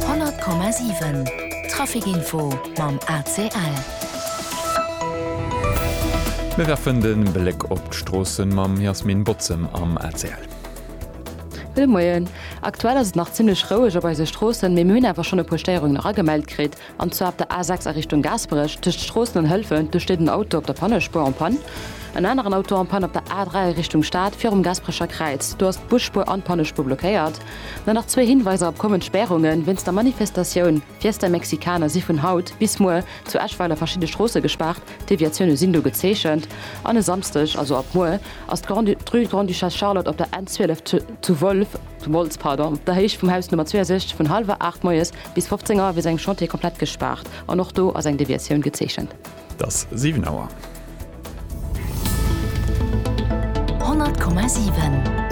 100,7 Trafic Info mam ACL. Mir werfen de Bléck op d'Stroossen mam Yasmine Botzem am ACL. Gudde Moien. Aktuell ass et nach zimmlech roueg op eise Stroossen, mee mir hunn awer schonn e puer Stéierungen eragemellt kritt. an zwar op der A6 a Richtung Gaasperech tëscht Stroossen an Hëlwen, do steet en Auto op der Pannespuer en panne, en aneren Auto en panne op der A3 a Richtung Stad virum Gaasperecher Kräiz, do ass d'Busspuer an d'Pannespuer blockéiert. Dann nach zwee Hinweiser op kommend Spärungen, Wéinst der Manifestatioun Fiesta Mexicana si vun haut bis muer zu Eschweiler verschidde Stroosse gespaart, Deviatioune sinn do gezeechent an e Samsdeg, also ab muer, ass d'Rue Grande-Duchesse Charlotte op der N 12 zu Wolz op der Héicht vum Haus Nummer 62 vun hallwer 8 moies Bis 15 Auer wier esou engem Chantier komplett gespaart an och do ass eng Deviatioun gezeechent. Et ass 7 Auer. 100,7.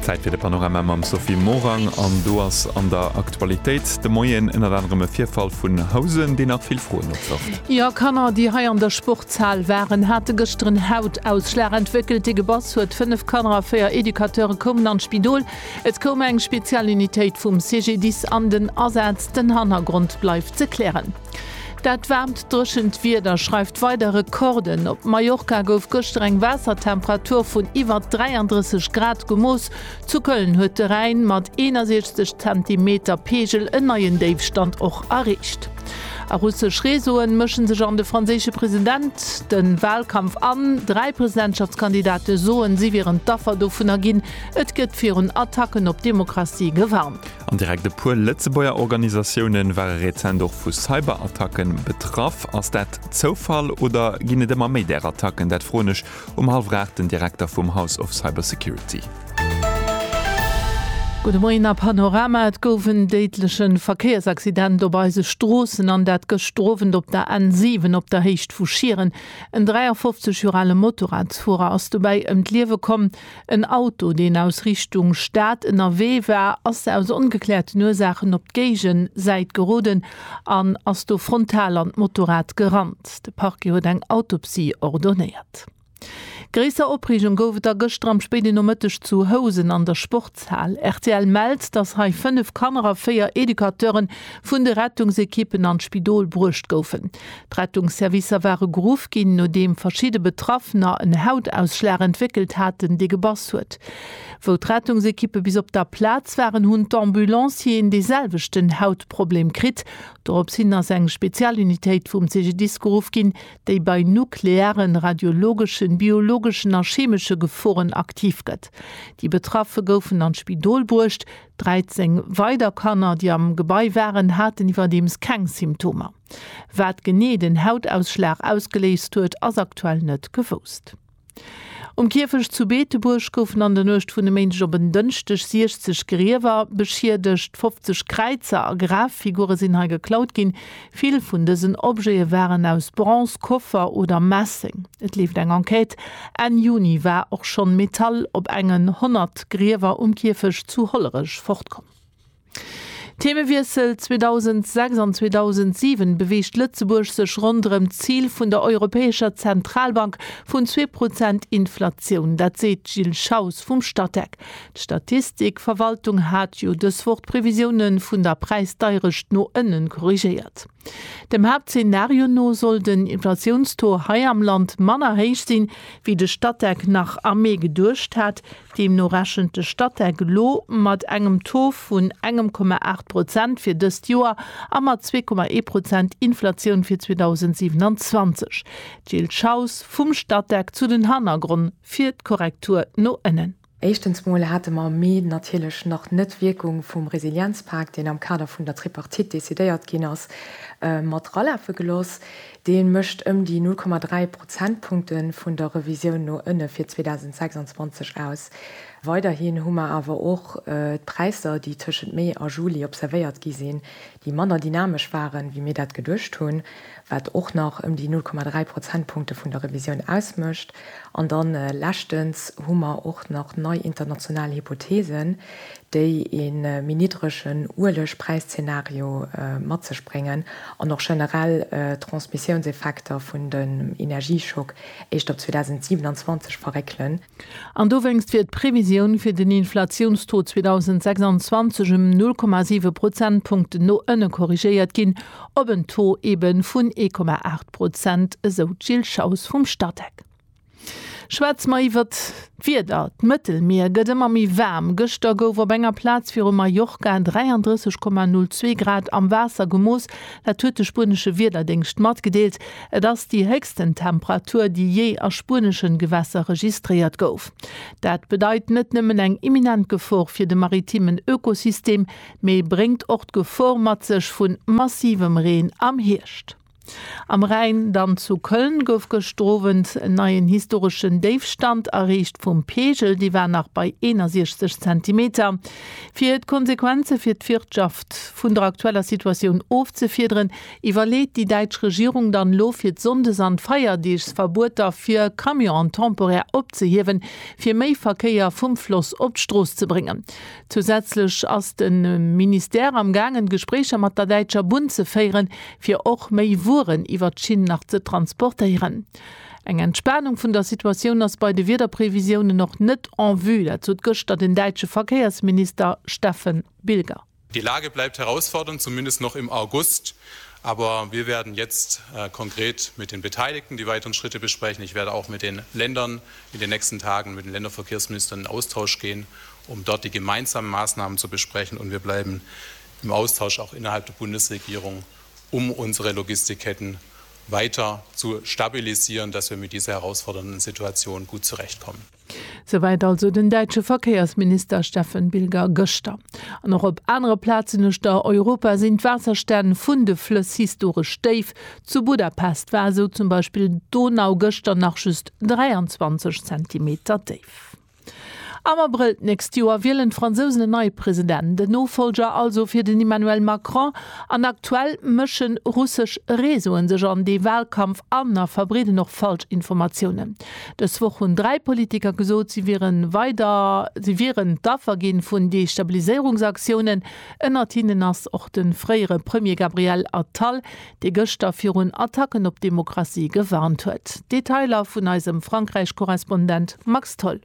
Zäit fir de Panorama mam Sophie Morang an do ass an der Aktualitéit de Moien ënnert anerem e Virfall vun Housen, deen nach vill Froen opwërft. Jo, Kanner, déi hei an der Sport. D'Zal waren, hate gëschter en Hautausschlag entwéckelt, dee gebass huet. Fënnef Kanner a véier Educateure koumen an d'Spidol. Et koum eng Spezialunitéit vum CGDIS an den Asaz. Den Hannergrond bleift ze klären. Dat waarmt, dréchent Wieder schreift weider Rekorden. Op Mallorca gouf gëschter eng Waassertemperatur vun iwwer 33 Grad gemooss. Zu Köln huet de Rhäin mat 61 Zentimeter Peegel en neien Déifstand och erreecht. A russesch Reseauen mëschen sech an de franséische President den Wahlkampf an. Dräi Presidentschaftskandidate soen, si wieren d'Affer dovunner ginn. Et gëtt virun Attacken op d'Demokratie gewarnt. An direkt e puer Lëtzebuerger Organisatiounen ware rezent och vu Cyberattacken betraff. Ass dat Zoufall oder ginn et ëmmer méi där Attacken? Dat froen ech Um hallwer 8 den Direkter vum House of Cybersecurity. Gudde Moien a Panorama, Et gouf en déidlechen Verkéiersaccident op eise Stroossen an dat gëschter Owend op der N7 op der Héicht vu Schieren. En 53 Joer ale Motorradsfuerer ass dobäi ëm d'Liewe komm. En Auto, deen aus Richtung Stad ënnerwee war, ass aus ongekläerten Ursaachen op d'Géigensäit geroden an ass do frontal an d'Motorrad gerannt. De Parquet huet eng Autopsie ordonéiert. Gréisser Opreegung gouf et da gëschter am spéiden Nomëtteg zu Housen an der Sportshal. Rtl mellt, dass hei 5 Kanner a 4 Educateuren vun de Rettungsekippen an d'Spidol bruecht goufen. D'Rettungsservicer ware geruff ginn, nodeem verschidde Betraffener en Hautausschlag entwéckelt haten, dee gebass huet. Wou d'Rettungsekippe bis op der Plaz waren, hunn d'Ambulancieren dee selwechten Hautproblem kritt. Dorops hin ass eng Spezialunitéit vum CGDIS geruff ginn, déi bei nuklearen, radiologeschen, biologeschen a chemesche Geforen aktiv gëtt. Déi Betraffe goufen an d'Spidol bruecht. 13 weider Kanner, déi am Gebai waren, haten iwwerdeems keng Symptomer. Wat genee den Hautausschlag ausgeléist huet, ass aktuell net gewousst. Um Kierfecht zu Beetebuerg goufen an der Nuecht vun e Méindeg op en Dënschdeg 60 Griewer beschiedegt. 50 Kräizer a Graffigure sinn hei geklaut ginn. Vill vun dësen Objete waren aus Bronze, Koffer oder Messeng. Et leeft eng Enquête. Enn Juni war och schonn Metall op engen 100 Griewer um Kierfecht zu Hollerech fortkomm. Themewiessel, 2006 an 2007 beweegt Lëtzebuerg sech ronderëm d'Zil vun der Europäescher Zentralbank vun zwee Prozent Inflatioun. Dat seet d'Jill Schaus vum Statec. D'Statistikverwaltung hat jo dës Woch d'Previsiounë vun der Präisdeierecht no ënnen korrigéiert. Dem Haaptzenario no soll den Inflatiounstaux hei am Land manner héich sinn, wéi de Statec nach am Mee geduecht hat. Deemno rechent de Statec elo mat engem Taux vun engem Komma aacht Prozent fir dëst Joer a mat zwee Komma ee Prozent Inflatioun fir 2027. D'Jill Schaus vum Statec zu den Hannergronn fir d'Korrektur no ënnen. Éischtens mol hate mer am Mee natierlech nach net d'Wierkung vum Resilienzpak, deen am Kader vun der Tripartite decidéiert ginn ass, mat ralafe geloss. Dee mécht ëm déi 0,3 Prozentpunkte vun der Revisioun no ënne fir 2026 aus. Weiderhin hu mer awer och d'Präisser, déi tëschent Mee a Juli observéiert gi sinn, déi manner dynamesch waren, wéi mir dat geduecht hunn, wat och nach ëm déi 0,3 Prozentpunkte vun der Revisioun ausmécht. An da leschtens hu mer och nach nei international Hypotheesen, déi e méi niddregen Uelegpräiszeenario mat sech bréngen an och generell d'Transmissiounseffekter vun dem Energieschock éischt op 2027 verréckelen. An dowéinst wier d'Previsioun fir den Inflatiounstaux 2026 ëm 0,7 Prozentpunkten no ënne korrigéiert ginn, op en Taux eeben vun 1,8 Prozent, esou d'Jill Schaus vum Statec. Schwätze mer iwwer d'Wieder, D'Mëttelmier gëtt ëmmer méi waarm. Gëschter gouf op enger Plaz viru Mallorca 33,02 Grad am Waasser gemooss. Dat huet de spuenesche Wiederdéngscht matgedeelt. Et ass déi héchsten Temperatur, déi jee a spuenesche Gewässer registréiert gouf. Dat bedeit net nëmmen eng imminent Gefor fir de maritimen Ökosystem, mee bréngt och d'Gefor mat sech vu massivem Reen am Hierscht. Am Rhäin, dann zu Köln, gouf gëschter Owend en neien historeschen Déifstand erreecht vum Peegel. Dee war nach bei 61 Zentimeter. Fir d'Konsequenze fir d'Wirtschaft vun der aktueller Situatioun ofzefiederen, iwwerleet déi däitsch Regierung dann elo fir d'Sonndes an d'Feierdeeg Verbueter fir Camionen temporär opzehiewen, fir méi Verkéier vum Floss op d'Strooss ze bréngen. Zousätzlech ass de Ministère am gaangen, Gespréicher mat der Däitscher Bunn ze féieren, fir och méi Wueren iwwert d'Schinn nach ze transportéieren. Eng Entspanung vun der Situatioun ass bei de Wiederprevisiounen och net en vue, dat sot gëschter den däitsche Verkéiersminister Steffen Bilger. Die Lage bleibt herausfordernd, zumindest noch im August, aber wir werden jetzt konkret mit den Beteiligten die weiteren Schritte besprechen. Ich werde auch mit den Ländern in den nächsten Tagen, mit den Länderverkehrsministern in Austausch gehen, um dort die gemeinsame Maßnahmen zu besprechen, und wir bleiben im Austausch auch innerhalb der Bundesregierung, um unsere Logistikketten weiter zu stabilisieren, dass wir mit dieser herausfordernden Situation gut zurechtkommen. Souwäit also den däitsche Verkéiersminister Steffen Bilger gëschter. An och op anere Plazen uecht der Europa sinn d'Waasserstänn vun de Flëss historesch déif. Zu Budapest war esou zum Beispill d'Donau gëschter nach just 23 Zentimeter déif. Am Abrëll d'nächst Joer wielen d'Fransousen en neie President, en Nofollger also fir den Emmanuel Macron. An aktuell mësche russesch Reseaue sech an dee Walkampf an a verbreeden och falsch Informatiounen. Dës Woch hunn dräi Politiker gesot, si wieren weider, si wieren d'Affer gi vun Destabiliséierungsaktiounen. Ënnert hinnen ass och de fréiere Premier Gabriel Attal, dee gëschter virun Attacken op d'Demokratie gewarnt huet. Detailer vun eisem Frankräich-Korrespondent Max Tholl.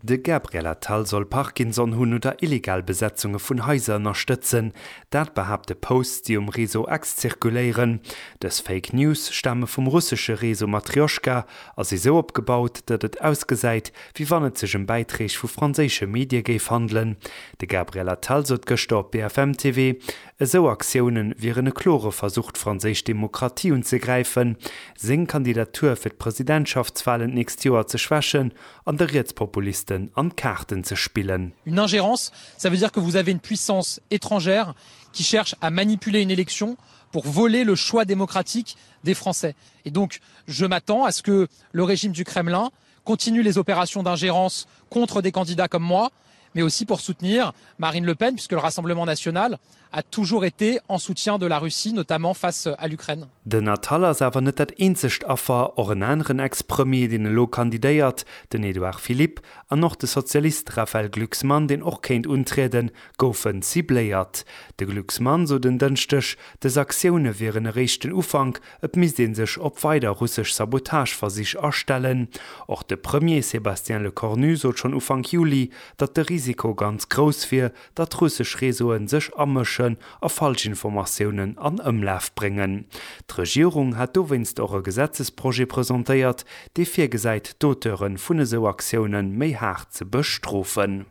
De Gabriel Attal soll Parkinson hunn oder illegal Besetzunge vun Haiser ënnerstëtzen. Dat behaapte Posts, déi um Réseau X zirkuléieren. Dës Fake News stame vum russesche Réseau Matrjoschka a si sou opgebaut, datt et ausgesäit, wéi wann et sech ëm Bäitreeg vu franséische Medie géif handelen. De Gabriel Attal sot gëschter op BFM TV, Esou Aktioune wieren e klore Versuch d'franséisch Demokratie unzegräifen, seng Kandidatur fir d'Presidentschaftswalen d'nächst Joer ze schwächen an de Rietspopulisten an d'Kaarten ze spillen. Une ingérence, ça veut dire que vous avez une puissance étrangère qui cherche à manipuler une élection pour voler le choix démocratique des Français. Et donc, je m'attends à ce que le régime du Kremlin Continue les opérations d'ingérence contre des candidats comme moi, mais aussi pour soutenir Marine Le Pen, puisque le Rassemblement national a toujours été en soutien de la Russie, notamment face à l'Ukraine. Den Attal ass awer net dat eenzegt Affer. Och en aneren Ex-Premier, deen elo kandidéiert, den Edouard Philippe, an och de Sozialist Raphaël Glucksmann, deen och kéint untrieden, goufen cibléiert. De Glucksmann sot en Dënschdeg, dës Aktioune wieren eréischt den Ufank, Et misst ee sech op weider russesch Sabotageversich astellen. Och de Premier Sébastien Lecornu sot schonn Ufank Juli, datt de Risiko ganz grouss wier, datt russesch Reseaue sech amëschen a Falschinformatiounen an Ëmlaf bréngen. D'Regierung hat dowéinst och e Gesetzesprojet presentéiert, dee virgesäit d'Auteure vun esou Aktioune méi haart ze bestrofen.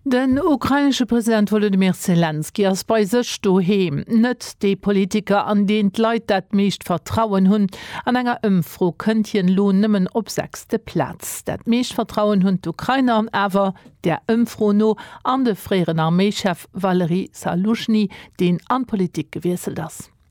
Den ukrainesche President Wolodymyr Selenskyj ass bei sech doheem net dee Politiker, an deen d'Leit dat meescht Vertrauen hunn. An enger Ëmfro kënnt hien elo nëmmen op sechste Plaz. Dat meescht Vertrauen hunn d'Ukrainer awer där Ëmfro no an de fréieren Arméichef Valery Zaluzhny, deen an d'Politik gewiesselt ass.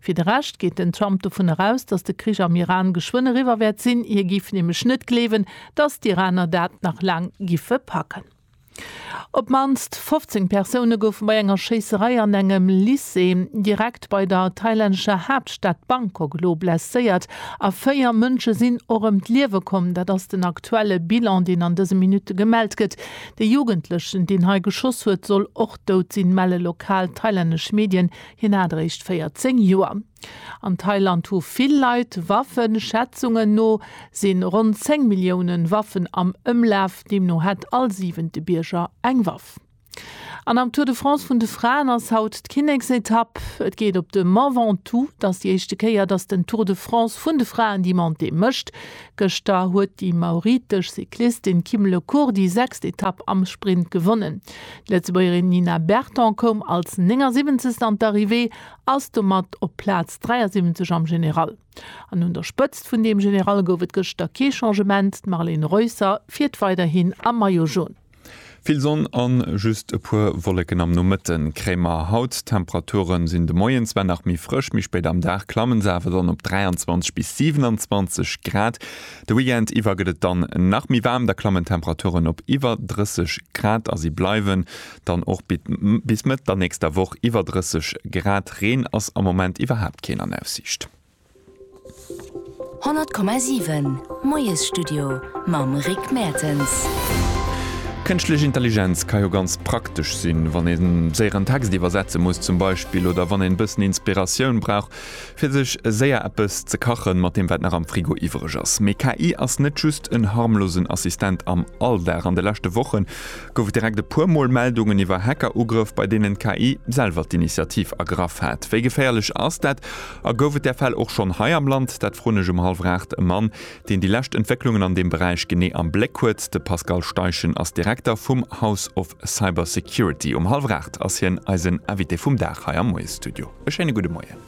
Fir de Rescht geet den Trump dovun eraus, datt de Krich am Iran geschwënn eriwwer wäert sinn. Hie giff nämlech net gleewen, datt d'Iraner dat nach laang giffe packen. Op d'mannst 15 Persoune goufe bei enger Schéisserei an engem Lycée direkt bei der thailännescher Haaptstad Bangkok elo blesséiert a véier Mënsche sinn och ëm d'Liewe komm. Dat ass den aktuelle Bilan, deen an dëse Minutte gemellt gëtt. De Jugendlechen, deen hei geschoss huet, soll och dout sinn, melle lokal thailännesch Medien. Hien hat eréischt 14 Joer. An Thailand hu vill Leit Waffen. Schätzungen no si ronn 10 Milliounen Waffen am Ëmlaf. Deemno hätt all siwente Bierger eng Waff. An am Tour de France vun de Fraen ass haut d'Kinneksetapp. Et geet op de Mont Ventoux. Et ass déi éischte Kéier, datt den Tour de France vun de Fraen déi Montée mécht. Gëschter huet déi mauritesch Cyclistin Kim Le Court déi sechst Etapp am Sprint gewonnen. D'Lëtzebuergerin Nina Berton koum als 79. an d'Arrivée, ass domat op Plaz 73 am General. An un der Spëtzt vun deem General gouf et gëschter kee Changement, d'Marlene Reusser fiert weiderhin am Maillot Jaune. Vill Sonn an just e puer Wolleken am Nomëtte kréie mer haut. D'Temperature sinn de Moien zwar nach méi frësch, méi spéit am Dag klamme se awer dann op 23 bis 27 Grad. De Weekend iwwer gëtt et dann nach méi waarm, da klammen d'Temperaturen op iwwer 30 Grad a si bleiwen dann och bis Mëtt der nächster Woch iwwer 30 Grad. Reen ass am Moment iwwerhaapt keen an Aussiicht. 100,7 Moiesstudio mam Rick Mertens. Kënschtlech Intelligenz ka jo ganz praktesch sinn, wann ee séier en Text iwwersetze muss zum Beispill oder wann een e bëssen Inspiratioun brauch fir sech séier eppes ze kachen mat deem wat nach am Frigo iwwereg ass. Mee KI ass net just en harmlosen Assistent am Alldag. An de leschte Woche gouf et direkt e puer mol Meldungen iwwer Hacker-Ugrëff bei deenen d'KI selwer d'Initiativ ergraff hat. Wéi geféierlech ass dat A gouf et där Fäll och schonn hei am Land? Dat froen ech um hallwer aacht e Mann, deen déi lescht Entwécklungen an deem Beräich genee am Bléck huet. De Pascal Steichen ass Direkter vum House of Cybersecurity. Um hallwer aacht ass hien eisen Invité vum Dag hei am Moie-Studio. E schéine gudde Moien.